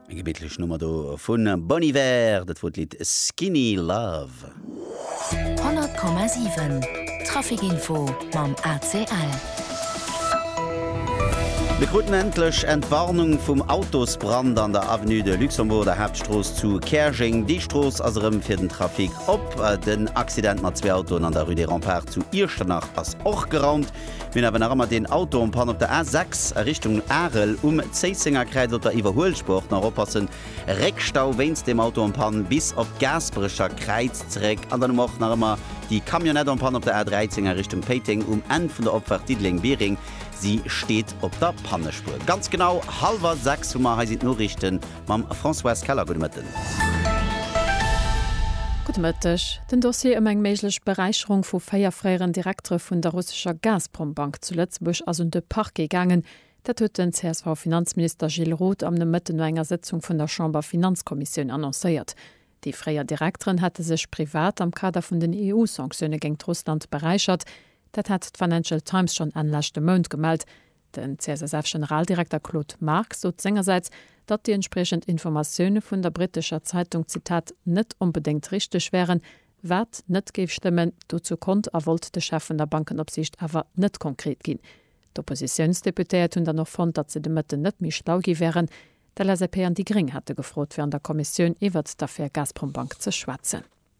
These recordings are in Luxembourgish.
Eng gemittlech Nummer do vu Bon Iver, dat wor d'Lidd Skinny Love. 100,7 Traficinfo mam ACL. Mir kruten endlech Entwarnung vum Autosbrand an der Avenue de Luxembourg, der Haaptstrooss zu Käerjeng. Déi Strooss ass erëm fir den Trafic op. Den Accident mat zwee Autoen an der Rue des Remparts zu Iechternach ass och geraumt. Mir hunn awer nach ëmmer deen Auto en panne op der A6 a Richtung Arel. Um Zéisséngerkräiz op der Iwwerhuelspur och nach oppassen, Réckstau wéinst dem Auto en panne bis op d'Gaasperecher Kräiz zeréck. An dann hu mer och nach ëmmer déi Camionnette en panne op der A13 a Richtung Péiteng. Um Enn vun der Opfahrt Diddeleng-Biereng, si steet op der Pannespur. Ganz genau hallwer 6 hu mer. Hei sinn d'Noriichten. mam Françoise Keller. Gudde Mëtten. Gudde Mëtteg. Den Dossier ëm eng méiglech Beräicherung vu véier fréieren Direktere vun der russescher Gazprom-Bank zu Lëtzebuerg ass un de Parquet gaangen. Dat huet den CSV-Finanzminister Gilles Roth am Nomëtten no enger Sëtzung vun der Chamber-Finanzkommissioun annoncéiert. Déi fréier Direkteren hätte sech privat am Kader vun den EU-Sanktioune géingt Russland beräichert. Dat hat d'Financial Times schonn Enn leschte Mount gemellt. Den CSSF-Generaldirekter Claude Marx sot sengersäits, datt déi entspriechend Informatioune vun der brittescher Zeitung, Zitat, net onbedéngt richteg wären, wat net géif stëmmen. Dozou konnt a wollt de Chef vun der Bankenopsiicht awer net konkret ginn. D'Oppositiounsdeputéiert hunn dann och fonnt, datt se de Mëtten net méi schlau gi wären. D'LSAP an déi Gréng hate gefrot, fir an der Kommissioun iwwert d'Affär Gazprombank ze schwätzen.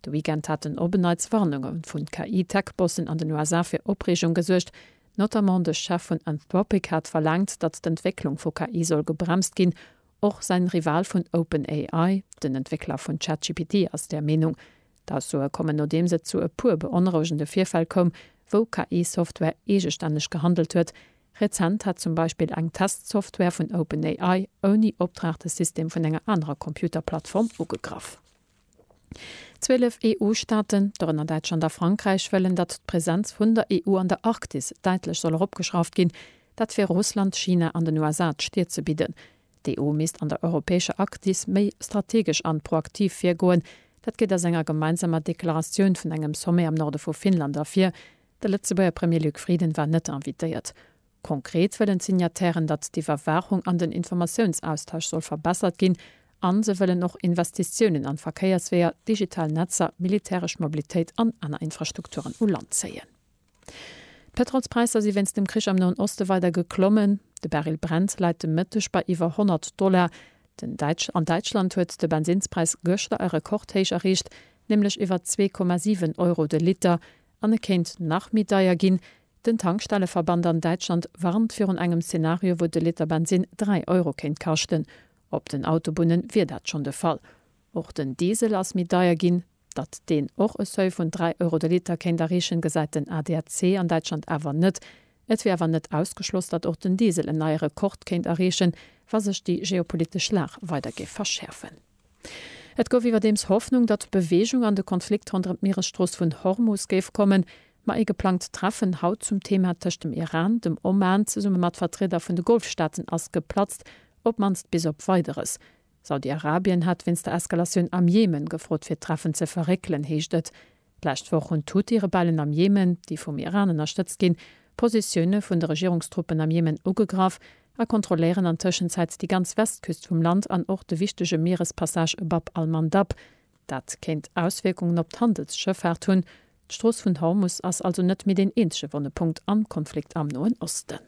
De Weekend haten op en Neits Warnunge vu KI-Tech-Bossen an den USA fir Opreegung gesuergt. Notamment de Chef vun Anthropic hat verlaangt, datt d'Entwécklung vu KI soll gebremst ginn. Och säin Rival vun OpenAI, den Entwéckler vun ChatGPT, ass där Meenung. D'Aussoe kommen nodeems et zu e puer beonrouegende Virfäll koum, wou KI-Software eegestänneg gehandelt huet. Rezent hat zum Beispill eng Test-Software vun OpenAI ouni Opdrag de System vun enger anerer Computer-Plattform ugegraff. Zwielef EU-Staaten, dorënner Däitschland a Frankräich, wëllen, datt d'Presenz vun der EU an der Arktis däitlech soll eropgeschrauft ginn. Dat fir Russland, China an den USA d'Stir ze bidden. D'EU misst an der europäescher Arktis méi strategesch an proaktiv virgoen. Dat geet aus enger gemeinsamer Deklaratioun vun engem Sommet am Norde vu Finnland ervir. De Lëtzebuerger Premier Luc Frieden war net invitéiert. Konkret wëllen d'Signatairen, datt d'Iwwerwaachung an den Informatiounsaustausch soll verbessert ginn a se wëllen och Investitiounen an Verkéiersweeër, digital Netzer, militäresch Mobilitéit an aner Infrastrukturen u Land zéien. D'Pétrolspräisser si wéinst dem Krich am Noen Oste weider geklommen. De Baril Brent läit de Mëtteg bei iwwer 100 Dollar. Den Däitsch an Däitschland huet de Bensinnspräis gëschter e Rekordhéich erreecht, nämlech iwwer 2,7 Euro de Liter. An e kéint nach méi deier ginn. Den Tankstelleverband an Däitschland warnt virun engem Zenario, wou de Liter Bensinn 3 Euro kéint kaschten. Op den Autobunne wier dat schonn de Fall. Och den Diesel ass méi deier ginn. Datt deen och e Seuil vun 3 Euro de Liter kéint erreechen, gesäit den ADAC an Däitschland awer net. Et wier awer net ausgeschloss, datt och den Diesel en neie Rekord kéint erreechen, wa sech déi geopolitesch Lag weider géif verschäerfen. Et gouf iwwerdeems Hoffnung, datt Beweegung an de Konflikt ronderëm d'Mieresstrooss vun Hormus géif kommen, ma ee geplangt Treffen haut zum Thema tëscht dem Iran, dem Oman zesumme mat Vertrieder vun de Golfstaaten ass geplatzt, op mannst bis op Weideres. Saudi-Arabien hat wéinst der Eskalatioun am Jemen gefrot fir d'Treffen ze verréckelen, heescht et. D'lescht Woch hunn d'Huthi-Rebellen am Jemen, déi vum Iran ënnerstëtzt ginn, d'Positioune vun de Regierungstruppen am Jemen ugegraff a kontrolléieren an Tëschenzäit déi ganz Westküst vum Land an och de wichtege Mierespassage e Bab al-Mandab. Dat kéint Auswierkungen op d'Handelsschëffaart hunn. D'Strooss vun Hormus ass also net méi deen eenzege wonne Punkt am Konflikt am Noen Osten.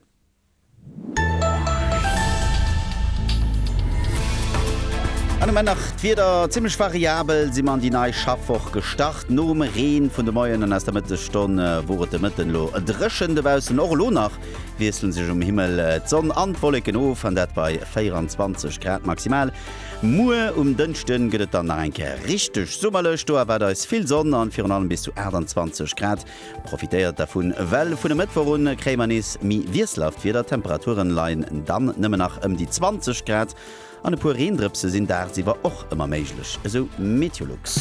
An um Enn nach d'Wieder, Zimmlech variabel si mer an déi nei Schaffwoch gestart. Nom Reen vun de Moien an aus der Mëttesstonn wor et de Mëtten elo dréchen dobaussen. Och elo nach wiessle sech um Himmel d'Sonn an d'Wolleken of, an dat bei 24 Grad maximal. Muer um Dënschde gëtt et dann nach eng Kéier richteg summerlech, do erwaart eis vill Sonn an virun allem bis zu 28 Grad. Profitéiert dervun, well vun e Mëttwoch un kréie mer nees méi wiesselhaft Wieder. D'Temperaturen leien dann nëmmen nach ëm déi 20 Grad an e puer Reendrëpse sinn daagsiwwer och ëmmer méiglech, esou Meteolux.